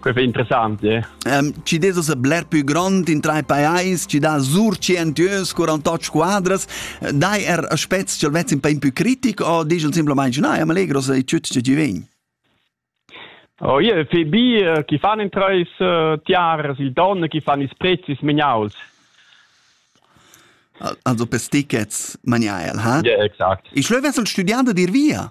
Quei è interessant, eh? Um, ci des ussa bler più grond in tre pajais, ci dà sur 100 euros, 48 squadras, dai er aspects che vezz in pain più critic o digel semplicemente no, am allegro se tut che ti vegn? Oh, io fe bi chi fan in treis tiaras il don, chi fan ils prezis meniaus. Also per tickets maniaiel, ha? Ja, exakt. Ich schlöwe studiando dir via.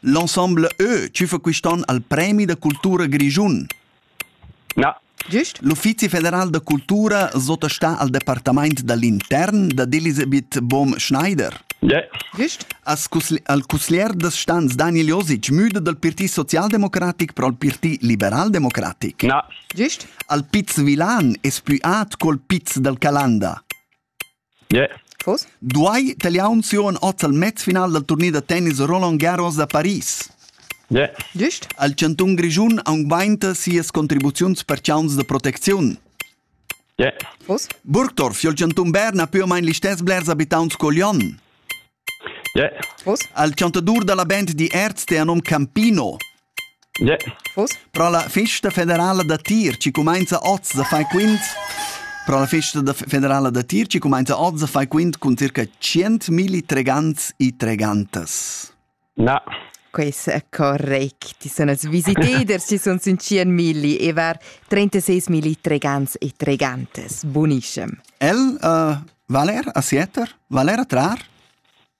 L'ensemble Ö tschüfa quist'on al premi da cultura grischun. Na. Güst? L'Uffizi federal da cultura sottostà al departamaint da l'intern dad Elisabeth Bohm-Schneider. Güst? As cusli- al cusglier da stans Daniel Josic müda dal Parti socialdemocratic pro al Parti liberaldemocratic. Na. Güst? Al Piz Vilan es plü at col Piz dal Calanda. Duai Taliaunzion oz al mezfinal dal turnier da tennis Roland Garros da Paris? Il chantun Grischun augmenta sias contribuziuns per chauns da protecziun. Burgdorf, il chantun Bern ha più o meno gli stessi blers abitants che Lyon. Il chantadur da la band di Erz è nome Campino. Pro la festa federala da tir chi cumainza hoz da far quint Pro la festa da federala da tir chi cumainza hoz da far quint cun circa tschientmilli tregants e tregantas. Na. Questo è correct. Ci sono visiteders, ci sono 5.000 e var 36.000 tregants e tregantes. Buonissimo. El, uh, Valer, a Sieter? Valer a Trar?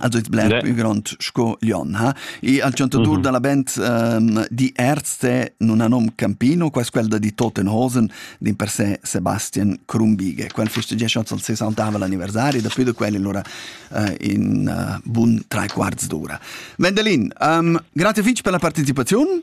Also il bler più grond sco Lyon ha e al chantadur mhm. dalla band um, di Erste non ha nom Campino quas quel di Tottenhosen din per se Sebastian Krumbige quel festeggia chanzon se saltava l'anniversario da più da quelli allora uh, in uh, bun tre quarts d'ora Vendelin um, grazie fitch per la partecipazione